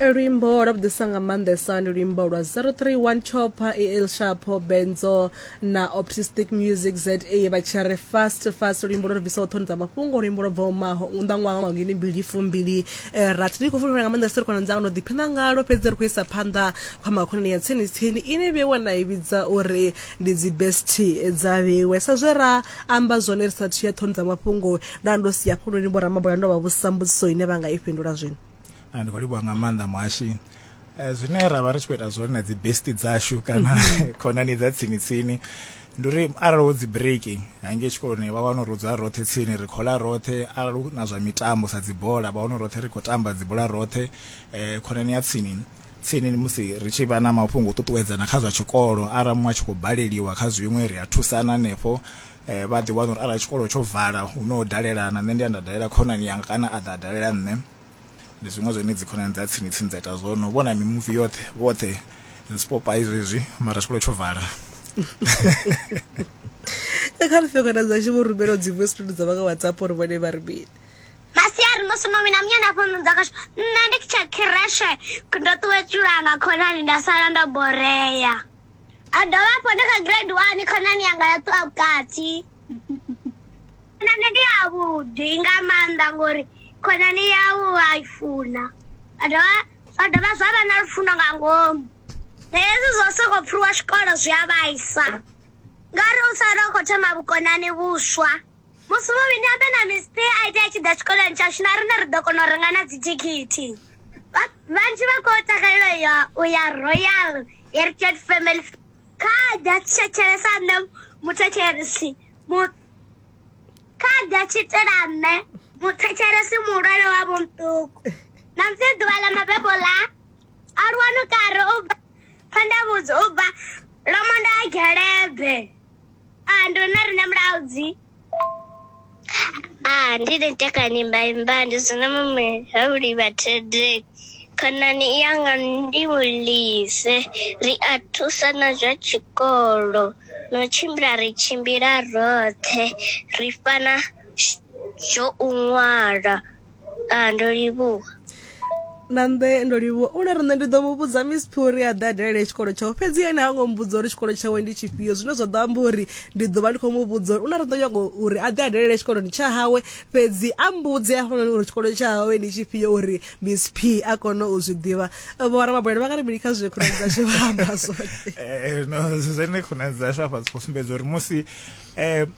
luimbo lwa vhuḓisa nga maanḓesa ndi luimbo lwa 031 chopa el shapo benzo na optistic music za vha tshi ri fast fast luimbo lwo bvisaho ṱhoni dza mafhungo luimbo lwo bvaho maho nnḓa ṅwaha wa ngini mbili fumbili eh, rathi ndi khou fulufhela nga maanḓesa ri khona dzanga no ḓiphina ngalo fhedzi ri khou isa phanḓa kha makhonani ya tsini tsini ine vhewa na i vhidza uri ndi dzi best dza vhewe sa zwe ra amba zwone ri sathu ya ṱhoni dza mafhungo nda ndo si hafhuloni vho ramaboya ndo vha vhusa mbudziso ine vha nga i fhindula zwino ah, ndi khou livhuwa nga maanḓa muhashi eh, zwine ra vha ri tshi khou ita zwone na dzi besti dzashu kana mhm. khonani dza tsini tsini ndi uri arali wo dzi breaki hange tshikoloni vha wana uri u dzula roṱhe tsini ri khola roṱhe arali hu na zwa mitambo sa dzibola vha wana roṱhe ri khou tamba dzibola roṱhe um khonani ya tsini tsini musi ri tshi vha na mafhungo u ṱuṱuwedzana kha zwa tshikolo arali muṅwe a tshi khou baleliwa kha zwiṅwe ri a thusana hanefho eh, vha ḓi wana uri arali tshikolo tsho vala hu no dalela na nṋe ndi a nda dalela khonani yanga kana a ḓa a dalela nṋe ndi zwiṅwe zwine dzi khonani dza tsini tsini dza ita zwone u vhona mimuvi yoṱhe vhoṱhe zwipopai zwezwi mara tshikolo tsho vala kha ri fekona dzashu vho rumela dzi voice note dza vha nga whatsapp uri vhone vha ri mini masiari musi mami na munyana fhonudza kasho nṋe ndi tsha khireshe ndo ṱuwetshulanga khonani nda sala ndo borea a dovha hafhu ndi kha grade one khonani yanga ya ṱuwa vhukati khonani ndi yavhuḓi nga maanḓa ngori khonani yau wa i funa a dovha zwa dovha zwa vha na lufuno nga ngomu hezwi zwo sokou pfhiwa tshikolo zwi a vhaisa ngauri u sala u khou thoma vhukonani vhuswa musi vhovhini abe na mispe a ite a tshi ḓa tshikoloni tshashu na rine ri ḓo kona u renga na dzithikhithi vhanzhi vha khou takalela ya u ya royal heritage family kha ḓa tshetshelesa nṋe muthetshelesi kha ḓa tshi itela nṋe muthetshelesi muhulwane wa vhomṱuku na musi ḓuvha ḽa mabebo ḽa aluwano kare u bva phandavhudzi u bva lomondo a gelebe Ah, ndo na rine mulaudzi. Ah, ndi ri tekani imba imba ndi zwina mume ha vhuli vha thede. Khonani yanga ndi vhulise ri a thusa na zwa tshikolo no tshimbila ri tshimbila roṱhe ri fana zwo u ṅwala Ah, ndo livhuwa. Nande ndo livhuwa. Une ri nṋe ndi ḓo mu vhudza Miss Phuri a ḓa dalele tshikolo tshawe. Fhedzi ene ha ngo mbudza uri tshikolo tshawe ndi tshifhio. Zwine zwa ḓo amba uri ndi ḓo vha ndi khou mu vhudza uri une ri ḓo nyaga uri a ḓe a dalele tshikoloni tsha hawe fhedzi a mbudze hafhanoni uri tshikolo tsha hawe ndi tshifhio uri Miss P a kone u zwi ḓivha. Vho ramabulani vha nga ri mini kha zwe khonani dzashu vha amba zwone? Eh, no, zwine khonani dzashu hafha dzi khou sumbedza uri musi eh,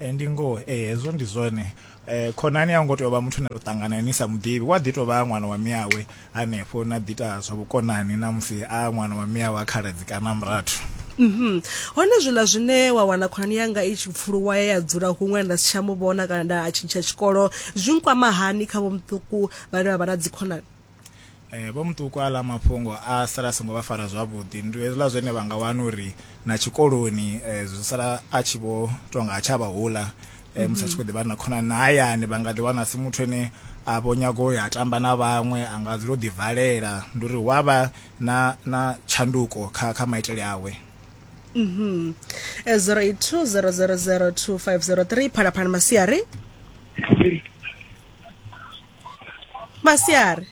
Ee, ndi ngoho. Ee, hezwo ndi zwone. Khonani a u ngo tea u vha muthu ane u ṱangana nae ni sa mu ḓivhi. U a ḓi tou vha ṅwana wa miawe hanefho, na ḓi ita zwa vhukonani na musi a ṅwana wa miawe, a khaladzi kana a murathu. Hone zwiḽa zwine wa wana khonani yanga i tshi pfuluwa ya ya dzula huṅwe nda si tsha mu vhona kana nda tshintsha tshikolo zwi nkwama hani kha vhomuṱuku vhane vha vha na dzikhonani? Eh, vho muṱuku aḽa mafhungo a sala a songo vha fara zwavhuḓi ndi hezwiḽa zwine vha nga wana uri na tshikoloni eh, zwi sala a tshi vho tonga a tsha vha hula eh, musi a tshi khou ḓivha na khonani na hayani vha nga ḓiwana si muthu ane a vho nyago u ya tamba na vhaṅwe a nga dzula o ḓivalela ndi uri hu a vha na na tshanduko kha kha maitele awe mhm. eh, 0820002503 phalaphala masiari masiari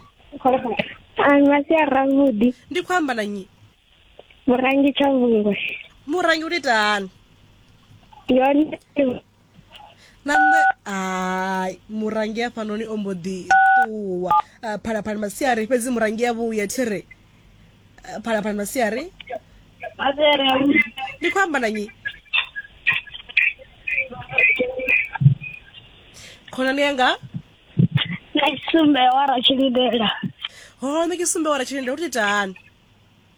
Ai, masiari avhuḓi ndi khou amba na nyi murangi tsha vhungwe murangi u ita hani yone na nṋe hai murangi hafhanoni o mbo ḓi ṱuwa Ah, phalaphala masiari fhedzi murangi ya vhuya thiri phalaphala masiari Masere ausi. ndi khou amba na nyi khonani yanga Na tsumbe wa ra tshilidela. ho ṋe ke sumbe wara tshilende u titani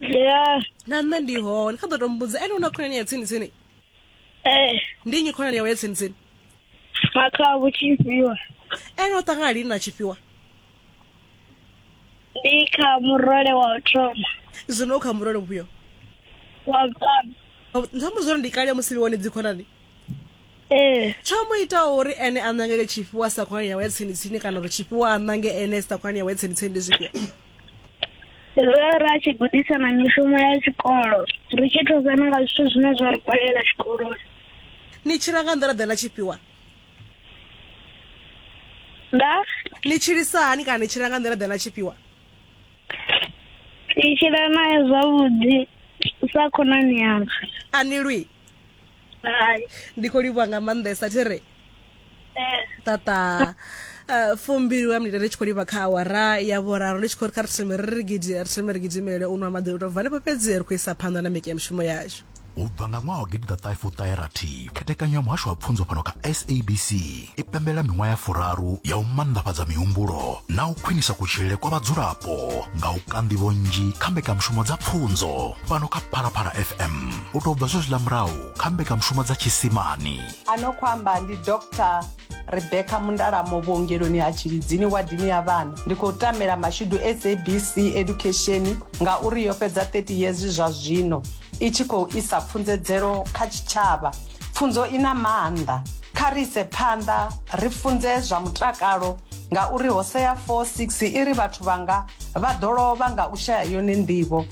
Yeah. na nṋe ndi hone kha ḓo to mbudza ene u na khonani ya tsini tsini Eh, ndi nyi khonani yawe ya tsini tsini makha vhutshifhiwa. ene o ṱangana lini na tshifhiwa ndi kha murole wa u thoma zwino u kha murole vhuyo wa vhuṱanu nṱhamu zwino ndi kale musi liwone dzikhonani ee tsho mu itaho uri ene a ṋangele tshifhiwa sa khonani yawe ya tsini tsini kana uri tshifhiwa a ṋange ene sa khonani yawe ya tsini tsini ndi zwifhio zwo ra tshi gudisa na mishumo ya tshikolo ri tshi thusana nga zwithu zwine zwa ri kwalela tshikoloni ni tshila nga nḓila ḓe na tshifhiwa nda ni tshilisa hani kana ni tshila nga nḓila ḓe na tshifhiwa ndi tshila naye zwavhuḓi sa khonani yanga a ni lwi hai ndi khou livhuwa nga maanḓesa thi re eh, tata eh, fumbili wa minete ri tshi khou livha kha awara ya vhuraru ndi tshi khou ri kha ri thome ri ri gidi- ri thome ri gidimele u nwa maḓi u tou bva hanefho fhedzi ri khou isa phanḓa na mbekanyamushumo yashu u bva nga ṅwaha wa gidi ḓa ṱahe fuṱahe rathi khethekanyo ya muhasho wa pfunzo fhano kha sabc i pembela miṅwaha ya furaru ya u mannḓafhadza mihumbulo na u khwinisa kutshilele kwa vhadzulapo nga u ka nḓivho nnzhi kha mbekanyamushumo dza pfunzo fhano kha phalaphala fm u tou bva zwezwiḽa murahu kha mbekanyamushumo dza tshisimani ano khou amba ndi dr rebecca mundalamo vhuongeloni ha tshilidzini wadini ya vhana ndi khou tamela mashudu sabc education ngauri yo fhedza 30 yezwi zwa zwino i tshi khou isa pfunzedzelo kha tshitshavha pfunzo i na maanḓa kha ri ise phanḓa ri funze zwa mutakalo ngauri hosea 46 i ri vhathu vhanga vha ḓo lovha nga u shaya yone nḓivho